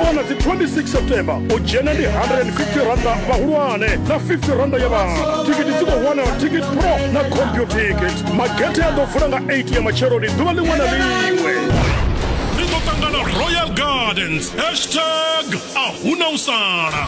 wana dzi 26 september u dzhena ndi 150 randa vhahulwane na 50 randa ya vhana tikiti dzi khou wanala ticket pro na computicket magethe a ḓo vula nga 8 ya matsheloni ḓuvha ḽiṅwe na ḽiṅwe ri ḓo ṱangana royal gardens hashtag a huna u sala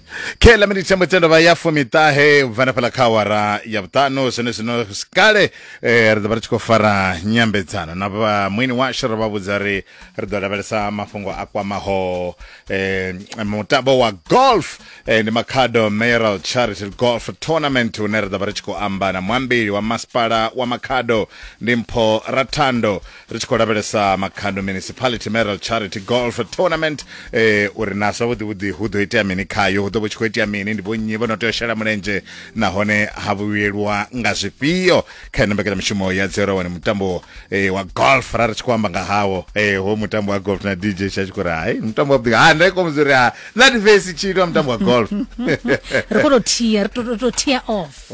khe ḽa miniti thembo tsendo vha ya fumiṱahe u bva na fhaḽa kha awara ya vhuṱanu zwone zwino kale eh, ri ḓo vha ri tshi khou fara nyambedzano na vha mwini washu ri vha vhudza ri ri ḓo lavhelesa mafhungo a kwamaho eh, mutambo wa golf eh, ndi makhado mayoral charity golf tournament une ri ḓo vha ri tshi khou amba na muambeli wa masipala wa makhado ndi mpho rathando ri tshi khou lavhelesa makhando municipality meral charity golf tournament eh, uri na zwavhuḓi vhuḓi hu ḓo itea mini khayo hu ḓo vha tshi khou itea mini ndi vhonnyi vho no tea u shela mulenzhe nahone ha vhuyelwa nga zwifhio kha ino mbekanyamushumo ya dzero wani mutambo eh, wa golf ra ri tshi khou amba nga hawo eh, ho mutambo wa golf na dj sha tshi khou ri hai mutambo wavhuḓi ha nda ikomuzi uri ha na divesi tshitwa mutambo wa golf ri khou tou thia ri tou- tou tou thia off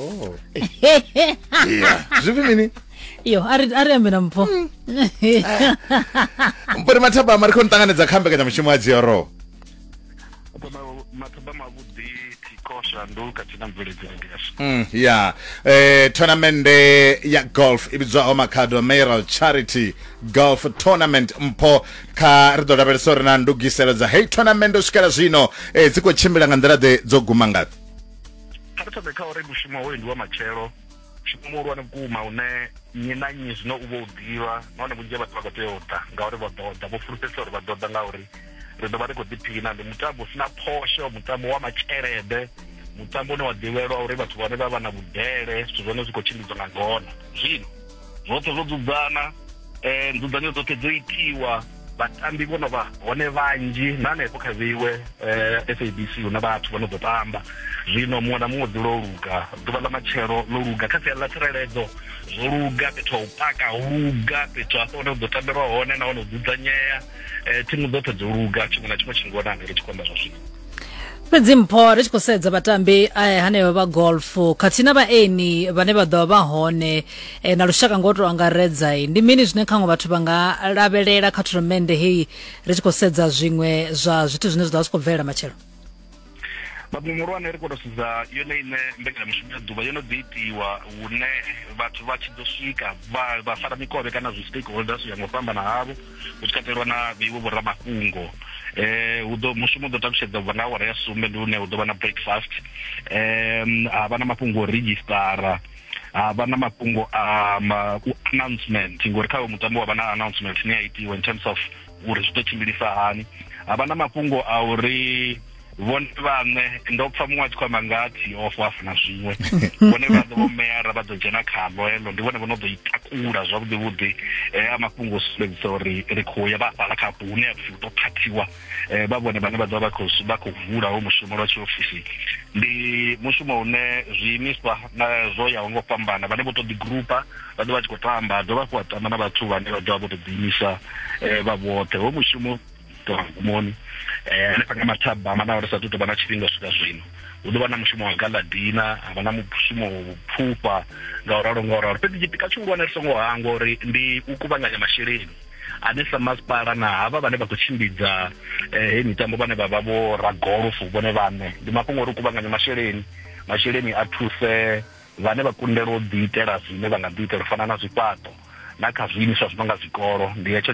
yeah. zwivhi mini iyo a ri a ri ambe na mpho mpori mathabama ri khou ni ṱanganedza kha mbekanyamushumo ya dziorowo mathuba mavhuḓi thiko shanduka thina mveledzele ndi yashu Mm, ya eh, tournamende ya golf i vhidzwaho makhado mayoral charity golf tournament mpho kha ri ḓo lavhelesa uri na ndugiselo dza heyi tournament u swikela zwino eh, dzi khou tshimbila nga nḓila ḓe dzo guma ngafhi kha ri thome kha uri mushumo hoyu ndi wa matshelo mushumo muhulwane vhukuma une nnyi na nnyi zwino u vho u ḓivha nahone vhunzhi ha vhathu vha khou tea u ḓa ngauri vha ḓo ḓa vho fulufhedzisa uri vha ḓo ḓa ngauri ri ḓo vha ri khou ḓiphina ndi mutambo u sina phosho mutambo wa matshelede mutambo une wa ḓivhelwa uri vhathu vhane vha vha na vhudele zwithu zwone zwi khou tshimbidzwa nga ngona zwino zwoṱhe zwo dzudzana um nzudzanyo dzoṱhe dzo itiwa vhatambi vho no vha hone vhanzhi na hanefho kha vheiwe eh, sabc hu na vhathu vho no ḓo tamba zwino muṅwe na muṅwe dzi lo luga ḓuvha ḽa matshelo lo luga kha siani ḽa tsireledzo zwo luga fhethu ha u paka ho luga fhethu hafho hune hu ḓo tambelwa hone nahone u dzudzanyea um thimu dzoṱhe dzo luga tshiṅwe na tshiṅwe tshi ngona ngeri tshikonda zwa zwino fhedzi mpho ri tshi khou sedza vhatambi eh, hanevha vha golf khathihi na vhaeni vhane vha ḓovha vha hone eh, na lushaka ngo to angaredza eh, ndi mini zwine khaṅwe vhathu vha nga lavhelela kha thurnamende heyi ri tshi khou sedza zwiṅwe zwa zwithu zwine zwa ḓo vha zwi khou bvelela matshelo babu muhulwane ri khou tou sedza yone ine mbekanyamushumo ya ḓuvha yo no ḓi itiwa hune vhathu vha tshi ḓo swika vha vha fara mikovhe kana zwi stakeholders u ya nga u fhambana havho hu tshi katelwa na vheiwe vhoramafhungo eh hu ḓo mushumo ḓo ṱalutshedza ubva nga awara ya sumbe ndi hune hu ḓo vha na breakfast um ha vha na mafhungo o registara ha vha na mafhungo a u announcement ngori kha mutambo wa vha na announcement ine ya itiwa in terms of uri zwi ḓo tshimbilisa hani ha vha na mafhungo a uri vhone vhaṋe ndo pfa muṅwe a tshi khou amba nga tiof a funa zwiṅwe vhone vhaṋe vho meara vha ḓo dzhena khalo heḽo ndi vhone vho no ḓo i takula zwavhuḓi vhuḓi eh, a mafhungo o sumbedzisa uri ri khou ya vha fhala kha hafho hune apfi hu ḓo phathiwa eh, vha vhone vhane vha ḓovha vha khou vula ho mushumo lwa tshiofisi ndi mushumo une zwiimiswa na zwo yaho ngo fhambana vhane vho to ḓi grupa vha ḓo vha tshi khou tamba dovha hafhu wa tamba na vhathu vhane vha ḓovha vho to ḓiimisa eh, vha vhoṱhe ho mushumo tora mugumoni eh, hanefha kha mathaba manaho ri sa tu tovha na tshifhinga u swika zwino hu ḓo vha na mushumo wa galadina ha vha na mushumo wa vhuphufha nga u ralo nga u ralo fhedzi tshipika tshihulwane ri songo hangwa uri ndi u kuvhanganya masheleni ane sa masipala na havha vhane vha khou tshimbidza eh, heyi mitambo vhane vha vha vho ragolofo vhone vhaṋe ndi mafhungo uri u kuvhanganya masheleni masheleni a thuse vhane vha kundelwa u ḓiitela zwine vha nga ḓiitela u fana na zwifhaṱo na kha zwiimiswa zwi no nga zwikolo ndi hetsho